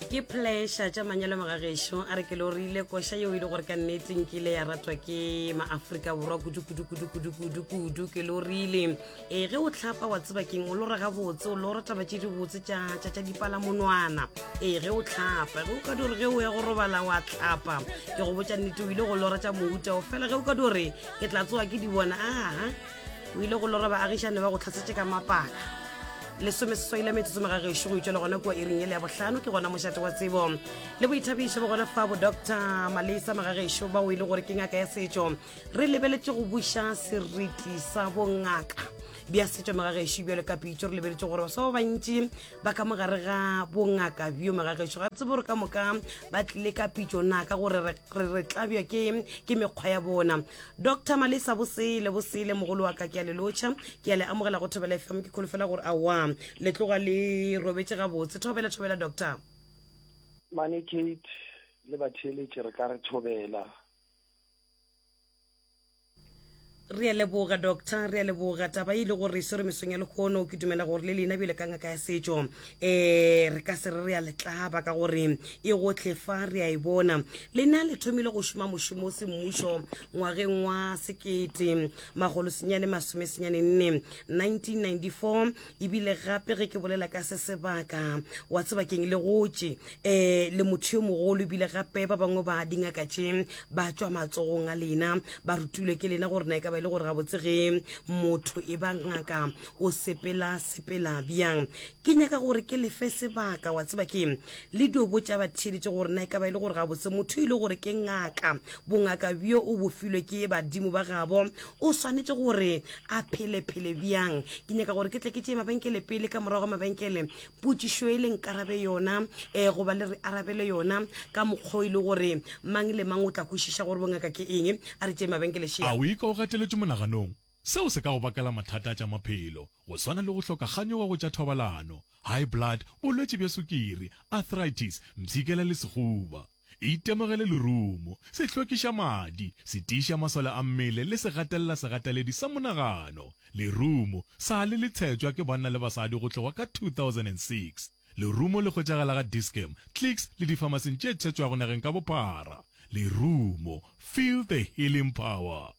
ke pleasure tša manyalo magagešo a re ke lo rile koša yeo e le gore ka nnete nkile ya ratwa ke maaforika borwa kudukudukudukudukudu ke lo rile ee ge o tlhapa wa tseba keng o lo rega botse o lo rataba tše dibotse tša tša dipalamonwana ee ge o tlhapa ge o ka dore ge o ya go robala wa tlhapa ke go botša nnete o ile go lora tša mouta o fela ge o ka dore ke tla tsoa ke di bona aa o ile go lora baagišane ba go tlhasetše ka mapaka lesome seswai la metsotso magagešo go itšwela gona kua iring ele ya bohlano ke gona mošate wa tsebo le boithabišo ba gona fa bo doctor malesa magagešo ba o ile gore ke ngaka ya setšo re lebeletse go buša seriti sa bongaka bja setšo magagešo bjalo ka pitso re lebeletse gore baswa ba bantši ba ka mogare ga bongaka bjo magagešo ga tsebo gore ka moka ba tlile ka pitso na ka gore re tlabja ke mekgwa ya bona Doctor Malesa bosele bosele mogolo wa ka ke a le lotšha ke a le amogela go thobela fm ke kholofela gore a wa le tloga le robetse gabotse thobela thobela doctor mane kate le batheeletše re ka re thobela re a leboga doctor re a leboga taba e ile gore e swere mesong ya lekgono ke dumela gore le lena bjale ka ngaka ya setšo eh re ka se re re a letlaba ka gore e gotlhe fa re a e bona lena le thomile go šoma mošomo o semmušo ngwageng wa sekete magolosenyane masomesenyane nne 1994 ebile gape ge ke bolela ka se sebaka wa sebakeng le gotše um le motho yo mogolo ebile gape ba bangwe ba dingaka tše ba tšwa matsogong a lena ba rutilwe ke lena gore na e ka ba e le gore gabotsege motho e ba ngaka O sepela sepela bjang? Ke nyaka gore ke lefe sebaka, wa tseba ke le dio botša ba theeletše gore na e ka ba e le gore gabotse motho e le gore ke ngaka, bongaka bjo o bo filwe ke badimo ba gabo, o swanetše gore a phele phele bjang. Ke nyaka gore ke tle ke tšee mabenkele pele, ka morago ga mabenkele potšišo e le nkarabe yona, eh, goba le re arabele yona ka mokgwa o e le gore mang le mang o tla kwešiša gore bongaka ke eng. A re tšee mabenkele, Shea. A o e ka o gateletše monaganong? Seo se ka go bakela mathata a tša maphelo, go swana le go hloka kganyogo go tša thobalano, high blood, bolwetši bja sukiri, arthritis, mpshikela le sehuba. Itemogele lerumo, sehlwekišamadi, setiišamasole a mmele le segatelela-segateledi sa monagano. Lerumo, sa le le tshetšwa ke banna le basadi go tloga ka 2006. Lerumo le hwetšagala ga Dis-Chem, Clicks le difamasing tše tshetšwago nageng ka bophara. Lerumo, feel the healing power!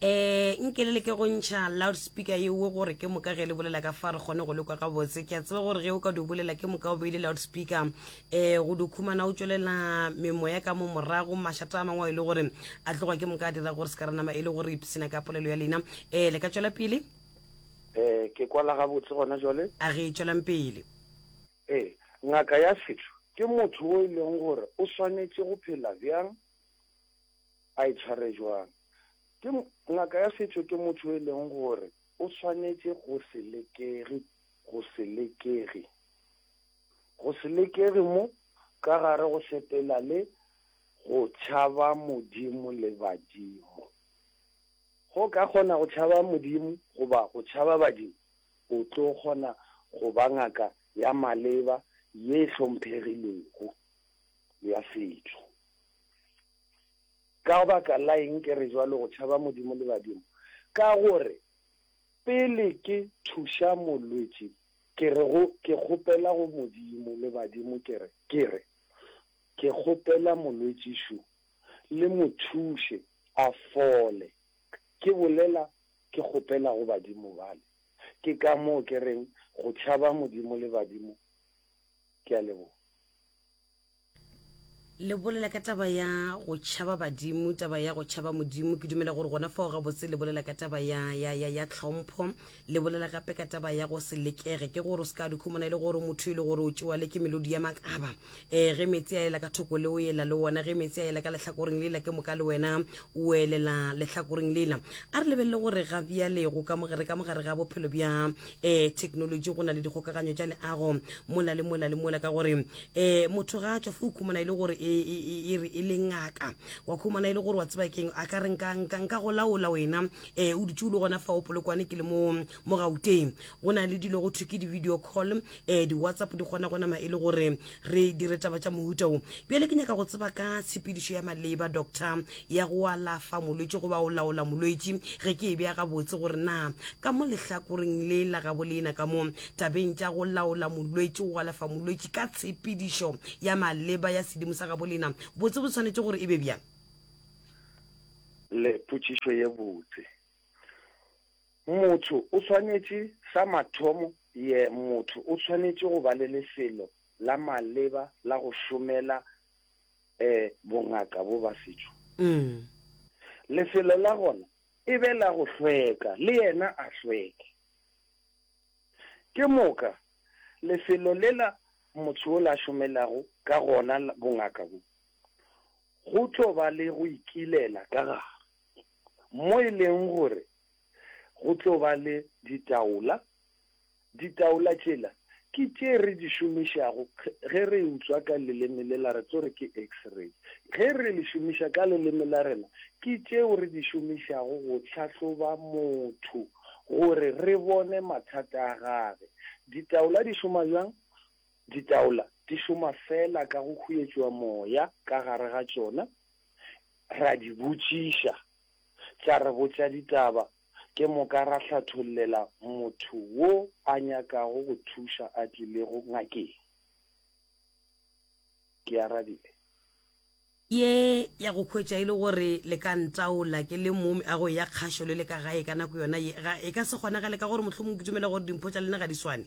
um nke le leke go ntšha loudspeaker yeo gore ke moka ge le bolela ka fa re kgone go lekwa gabotse ke a tseba gore ge o ka di bolela ke moka o beile loudspeaker um go dukhumana o tswelela memoya ka mo morago mašata a mangwe a e le gore a tlogwa ke moka a dira gore se ka ranama e le gore ipsena ka polelo ya lena um le ka tswela pele um ke kwala gabotse gona jale a re tswelang pele ee ngaka ya setho ke motho o e leng gore o swanetše go phela bjang A e tshware bjang? Ke ngaka ya setšo ke motho yo e leng gore o swanetše go se lekege, go se lekege, go se lekege mo ka gare go sepela le go tšhaba Modimo le badimo. Ge o ka kgona go tšhaba Modimo goba go tšhaba badimo, o tlo kgona go ba ngaka ya maleba ye e hlomphegilego ya setšo. Ka baka la eng ke re bjalo go tšhaba Modimo le badimo? Ka gore pele ke thuša molwetši ke re go ke kgopela go Modimo le badimo ke re ke re ke kgopela molwetši šo le mo thuše a fole ke bolela ke kgopela go badimo bale ke ka moo ke reng go tšhaba Modimo le badimo ke a leboga. le bolela ka taba ya go tšhaba badimo taba ya go tšhaba modimo ke dumela gore gona fao gabotse le bolela ka taba ya, ya, ya, ya tlhompho le bolela gape ka taba ya go se lekege ke gore o se ka dikhomona e le gore motho e le gore o tšewa le ke melodi ya makaba um ge metsi a ela ka thoko le o ela le wona ge metsi a ela ka lehlakoreng lela ke moka le wena o elela lehlakoreng lela a re lebelele gore ga bjalego re ka mogare ga bophelo bja um technology go na le dikgokaganyo tša leago mola le mola le mola ka gore um motho ga a tswa fo o khumana e le gore e, e, e, e re e le ngaka wa khumana e le gore wa tseba keng a ka re nka go laola wena um o dutse o le gona fa o polokwane ke le mo mo gauteng go na le dilo go thwe ke di-video call um di-whatsapp di kgona go nama e le gore re dire taba tša mohuta wo bjale ke nyaka go tseba ka tshepedišo ya maleba doctor ya go alafa molwetši goba o laola molwetši ge ke e bja gabotse gore na ka mo lehlakoreng le la gabo leena ka mo tabeng tša go laola molwetši go alafa molwetši ka tshepedišo ya maleba ya sedimo sa gabo leena botse bo tshwanetše gore e be bjang le potšišo ye botse Motho o swanetše, sa mathomo, ye, motho o swanetše go ba le lefelo la maleba la go šomela e, bongaka bo ba setšo. Lefelo la gona e be la go hlweka, le yena a hlweke. Ke moka, lefelo lela motho yola a šomelago ka gona bongaka bo, go tlo ba le go ikilela ka gare. mo e leng gore go tlo ba le ditaola. Ditaola tšela ke tše re di šomišago ge re e utswa ka leleme le la re tso re ke X-ray. Ge re le šomiša ka leleme la rena ke tšeo re di šomišago go tlhahloba motho gore re bone mathata a gage. Ditaola di šoma bjang? Ditaola di šoma fela ka go huetšwa moya ka gare ga tšona. Ra di botšiša, tla re botša ditaba, ke moka ra hlathollela motho wo a nyakago go thuša a tlilego ngakeng. Ke arabile. Ye ya go hwetša e le gore le ka ntaola ke le momi a go ya kgašo le le ka gae ka nako yona ye, ga e ka se kgonagale ka gore mohlomong ke dumela gore dimpho tša lena ga di swane.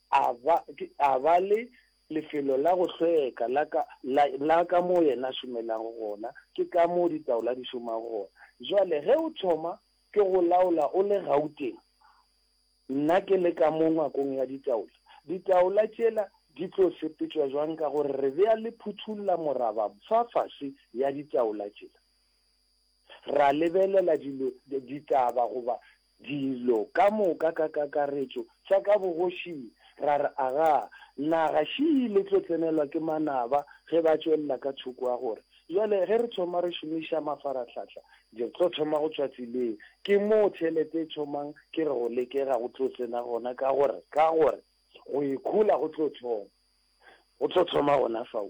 A ba, ke, a ba le lefelo la go hlweka la ka, la, la ka moo yena a šomelago gona, ke ka moo ditaola di šomago gona. Bjale, ge o thoma ke go laola o le Gauteng, nna ke le ka mo ngwakong ya ditaola, ditaola tšela di tlo sepetšwa bjang ka gore re be a le phuthulla moraba fa fase ya ditaola tšela, ra lebelela dilo, ditaba goba dilo ka moka ka kakaretšo tša ka bogošing, ra re, Aga, naga šii le tlo tsenelwa ke manaba ge ba tšwelela ka thoko ga gore. Bjale ge re thoma re šomiša mafaratlhahla, di tlo thoma go tšwa tseleng. Ke moo tšhelete e thomang, ke re go lekega go tlo tsena gona, ka gore, ka gore go ikhola go tlo thoma, go tlo thoma gona fao.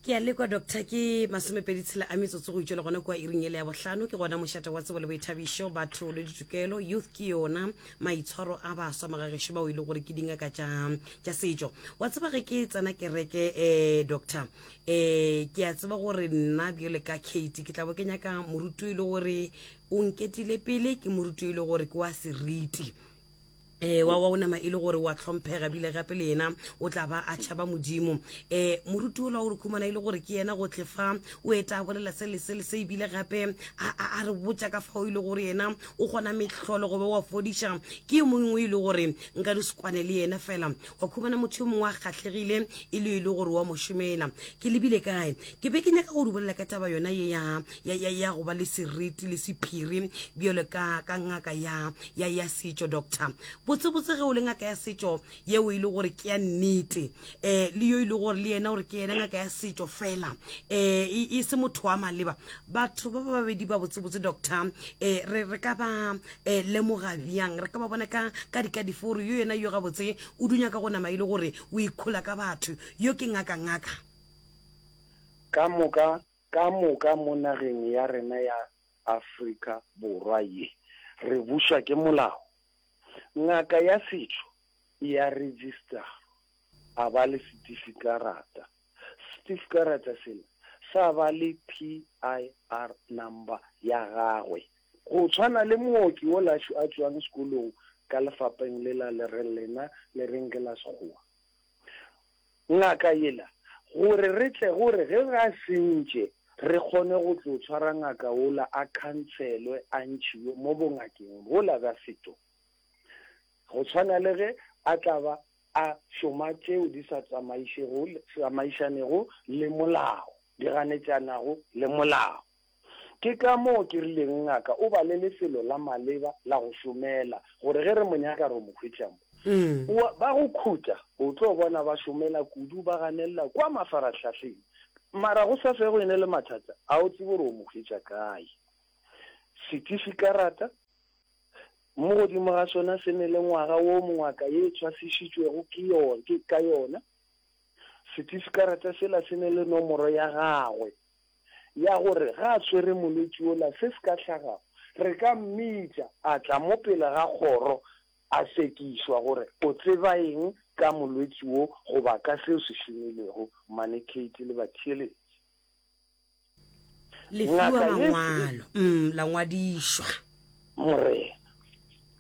ke a lekwa doctor ke masomepedi tshela a metsotso go itšwele gona kua iring ele ya bohlano ke gona mošate wa tsebo le boithabišo batho le ditokelo youth ke yona maitshwaro a baswa magagešo bao e le gore ke dingaka tša setšo wa tseba ge ke tsena kereke um doctor um ke a tseba gore nna bjole ka kate ke tlabo ke nyaka moruti e le gore o nketile pele ke moruti e le gore ke wa seriti Ewa, wa o nama e le gore wa tlhomphega bile gape le yena o tla ba a tšhaba Modimo. Um moruti ola o re khumana e le gore ke yena gotlhe fa o eta a bolela se le se le se ebile gape a, a, a re botša ka fao e le gore yena o gona mehlolo gobe wa fodiša ke yo mongwe e le gore nka di sekwane le yena fela wa khumana motho yo mongwe a kgatlhegile e le e le gore wa mo šomela ke lebile kae ke be ke nyaka go di bolela ka taba yona ye ya ya, ya, ya go ba le seriti le sephiri bjalo ka ka ngaka ya ya ya setšo doctor botsebotse ge o le ngaka ya setšo yeo e le gore ke ya nnete um le yo e le gore le yena gore ke yena ngaka ya setšo fela um e se motho wa maleba batho ba ba babedi ba botsebotse doctor um re re ka ba um lemoga bjang re ka ba bona ka ka dika dife gore yo yena yo gabotse o dunya ka go nama e le gore o ikhola ka batho yo ke ngaka ngaka ka moka Ka moka mo nageng ya rena ya Afrika Borwa ye re bušwa ke molao, ngaka ya setšo e a registerwa, a ba le setifikarata. Setifikarata sela sa ba le PIR number ya gagwe. Go tshwana le mooki wola a tšwang sekolong ka lefapeng lela le reng lena le reng ke la Sekgowa. Ngaka yela, gore re tle gore ge ga se ntše re kgone go tlo tshwara ngaka wola a khantshelwe a ntšhiwe mo bongakeng bwola bja setšo, go tshwana le ge a tla ba a šoma tšeo di sa tsamaišanego le molao, di ganetšanago le molao. Ke ka moo ke rileng ngaka o ba le lefelo la maleba la go šomela gore ge re mo nyaka re mo hwetša mo. O a, ba go khutša, o tlo bona ba šomela kudu, ba ganelela kwa mafarahlahleng. Mara go sa fego e ne le mathata, a o tsebe gore o mo hwetša kae? Setifikaratha, mo godimo ga sona se ne le ngwaga wo mongwaka ye e tshwasišitšwego ke yo, ke, ka yona. Setifikaratha sela se ne le nomoro ya gagwe, ya gore ga a swere molwetši yola, se se ka hlagago, re ka mmitša a tla mo pele ga kgoro a sekišwa gore o tseba eng ka molwetši wo goba ka seo se šomilego mane Katy le batheeletši. Le fiwa mangwalo, la ngwadišwa. Morena.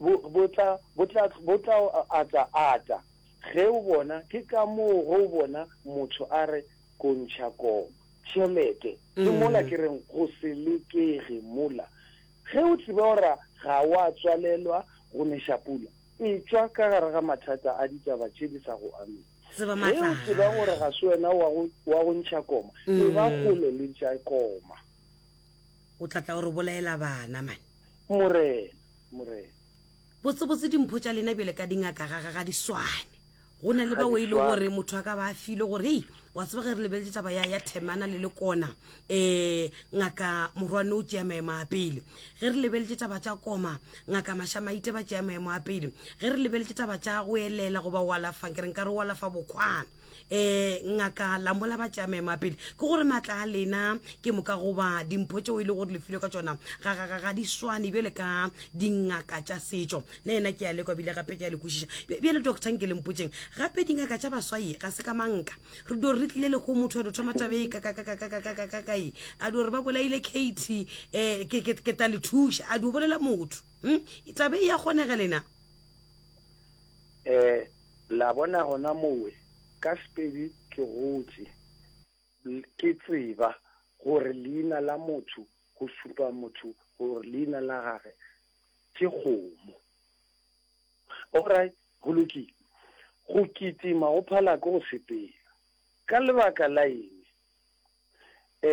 bo, bo tla, bo tla, bo tla o ata, ata. Ge o bona, ke ka moo ge o bona motho a re, Kontšha kong. Tšhelete. Ke mola ke reng, go se lekege mola. Ge o tseba gore ga o a tswalelwa go neša pula, etšwa ka gare ga mathata a ditaba tše di sa go amego. Tseba Ge maatla o a tseba gore Gagwe. ga se wena wa go, wa go ntšha koma, e ba kgole le ntša koma. O tla tla o re bolaela bana, man. Morena, Morena. Botsebotse dimpho tša lena bjale ka dingaka ga ga ga di swane. Go na le bao e le gore motho a ka ba a filwe gore, hei, wa tseba ge re lebeletse taba ya ya Themana le Lekona, eh, ngaka Morwane o tšea maemo a pele. Ge re lebeletse taba tša Koma, ngaka Mashamaite ba tšea maemo a pele. Ge re lebeletse taba tša go elela goba o alafa, ke re nka re o alafa bokgwana. um ngaka lambola ba tšame mapele ke gore maatla a lena ke moka goba dimpho tšeo e le gore lefilwe ka tsona ga di swane bjale ka dingaka tša setšo le ena ke ya lekwa bile gape ke ya le kwešiša bjale doctor nke lempotseng gape dingaka tša baswaye ga se ka manka re dio re tlile le go motho ado thoma tabe e kakakakakakakakae a dio re ba bolaile kate um ke ta le thuša a dio bolela motho hmm? tabe e ya kgonega lena um La bona gona mowe, ka Sepedi ke gotše, l, ke tseba, gore leina la motho go šupa motho gore leina la gage ke kgomo. All right, go lokile. Go kitima go phala ke go sepela. Ka lebaka la eng? E,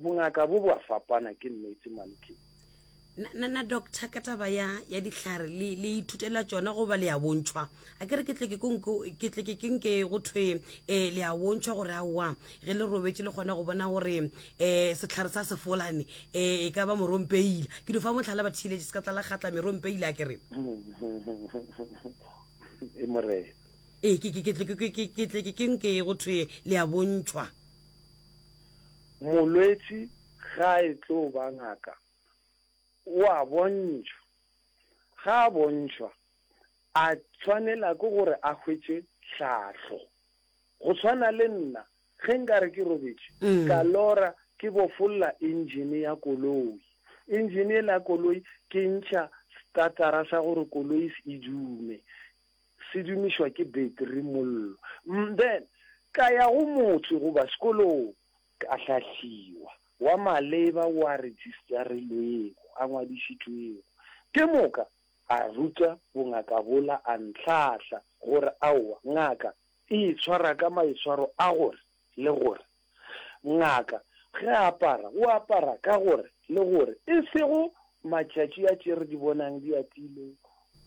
Bongaka bo bo a fapana ke nnete Malkin. Na, na, na doctor ka taba ya, ya dihlare le, le ithutela tšona goba le a bontšhwa? A ke re ke tle ke ko nko, ke tle ke ke nke go thwe e, le a bontšhwa gore aowa ge le robetše le kgona go bona gore e, sehlare sa sefolane e, e ka ba morompeila. Ke no fa mohlala ba theeletše se ka tlala kgatla merompeila a ke re. E morena. E, ke, ke, ke tle ke, ke, ke, ke tle ke ke nke go thwe le a bontšhwa. Molwetši ga a e tlo ba ngaka, o a bontšhwa. Ga a bontšhwa, a tshwanela ke gore a hwetše tlhahlo. Go tshwana le nna, ge nka re ke robetše, ka lora ke bofolla engine ya koloi. Engine e la koloi, ke ntšha starter-ra sa gore koloi e dume. Se dumišwa ke beteri, mollo. Mme, then, ka ya go motse goba sekolong, ka hlahliwa, wa maleba wo a registerilwego, a ngwadišitšwego. Ke moka a ruta bongaka bola, a ntlhahla, gore, Aowa, ngaka e itshwara ka maitshwaro a gore, le gore ngaka ge a apara o apara ka gore le gore e sego matšatši a tše re di bonang di atile,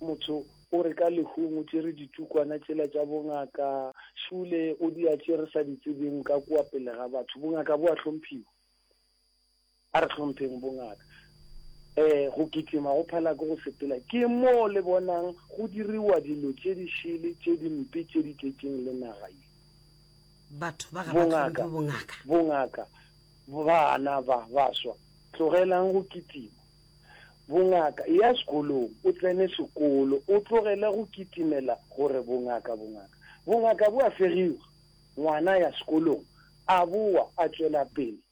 motho o re ka lehung o tšere ditukwana tšela tša bongaka, šule o di a tše re sa di tsebeng ka kua pele ga batho, bongaka bo a hlomphiwa. A re hlompheng bongaka. Ee, go kitima go phela ke go sepela. Ke moo le bonang go diriwa dilo tše di šele, tše di mpe, tše di tletšeng le naga ye. Batho ba ga ba hlomphwe bongaka. Bongaka, bana ba baswa, tlogelang go kitima. Bongaka, eya sekolong, o tsene sekolo, o tlogele go kitimela gore bongaka, bongaka. Bongaka bo a fegiwa. Ngwana a ya sekolong, a bowa, a tšwela pele.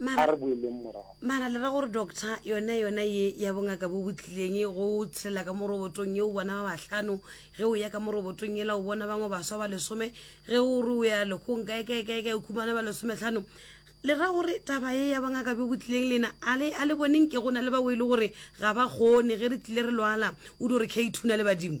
a re boeleng morago. Mara le ra gore doctor yona yona ye ya bongaka bo botlileng go tshela ka morobotong ye o bona ba bahlano ge o ya ka morobotong yela o bona bangwe baswa ba lesome ge o re o ya lekgong kae kae kae kae o khumana ba lesometlhano le ra gore taba ye ya bongaka bo botlileng lena a le boneng ke go na le bao e le gore ga ba kgone ge re tlile re lwala o di gore kate o na le badimo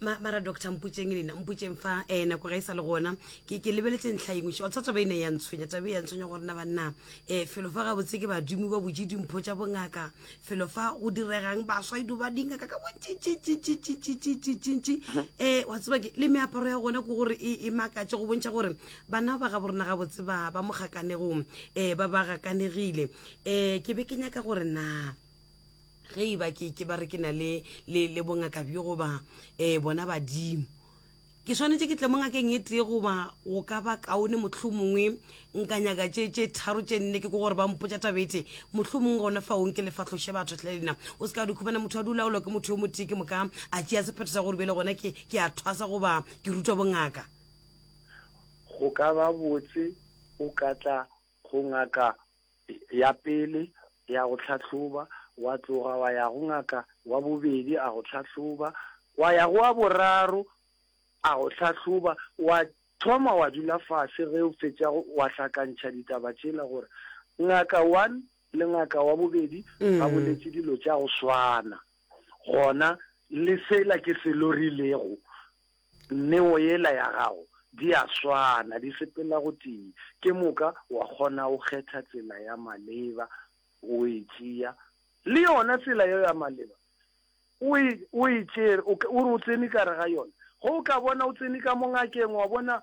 ma, mara doctor mputšeng lena mputšeng fa eh nako ga e sa le gona ke ke lebeletse ntlha engwe xa tsa taba e ne ya ntshwenya taba e ya ntshwenya gore na banna eh felo fa gabotse ke badimo ba botse dimpho tša bongaka felo fa go diregang baswa edu ba dingaka ka bontšintšintšintšintšintšintšintšintšintši eh wa tseba ke le meaparo ya gona ke gore e makatše go bontšha gore bana ba ga borena gabotse ba ba mo gakanegong eh ba ba gakanegile eh ke be ke nyaka gore na ge e ba ke ke ba re ke na le le le bongaka bjo goba eh bona badimo ke swanetše ke tle mo ngakeng e tee goba go ka ba kaone motlho mongwe nka nyaka tše tše tharo tše nne ke ko gore ba mpotsa tabete motlho mongwe gona fa onke le fatlhoše batho tlhe lena o se ka dikhubana motho a dulaolwa ke motho yo motee ke moka a tšea sephetho sa gore bjele gona ke ke a thwasa goba ke rutwa bongaka go ka ba botse o ka tla go ngaka ya pele ya go hlahloba, wa tloga wa ya go ngaka wa bobedi a go hlahloba, wa ya go wa boraro a go hlahloba, wa thoma wa dula fase ge o fetša wa hlakantšha ditaba tšela gore ngaka one le ngaka wa bobedi ba boletše dilo tša go swana, gona le sela ke se lorilego. Neo yela ya gago, di a swana, di sepela gotee. Ke moka wa kgona go kgetha tsela ya maleba, o e tšea. Le yona tsela yeo ya maleba, o e, o e tšere, o, o re o tsene ka gare ga yona. Ge o ka bona o tsene ka mo ngakeng, wa bona,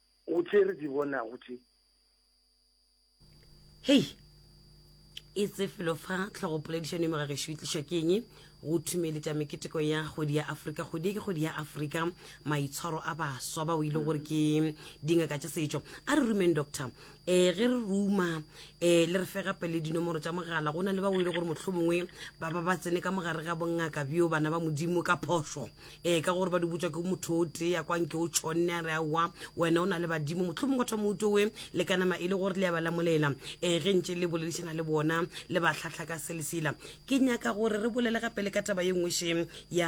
Go tše re di bonago tše. Hei! E tse felo fa tlhogopoledišano e mo ga gešo e tlišwa ke eng? Go thumeletša meketeko ya kgwedi ya Afrika. Kgwedi e ke kgwedi ya Afrika, maitshwaro a baswa bao e le gore ke dingaka tša setšo. A re rumeng, Doctor, um ge re ruma um le re fe gape le dinomoro tša mogala go na le ba o e le gore motlho mongwe ba ba ba tsene ka mogare ga bongaka bjo bana ba modimo ka phoso um ka gore ba di botswa ke motho o tee ya kwanke o tšhonne a re aowa wena o na le badimo motlho mongwe thoma utowe le ka nama e le gore le ya ba lamolela um ge ntse le boledišana le bona le ba tlhatlha ka selesela ke nyaka gore re bolele gape le ka taba ye nngwe šeng ya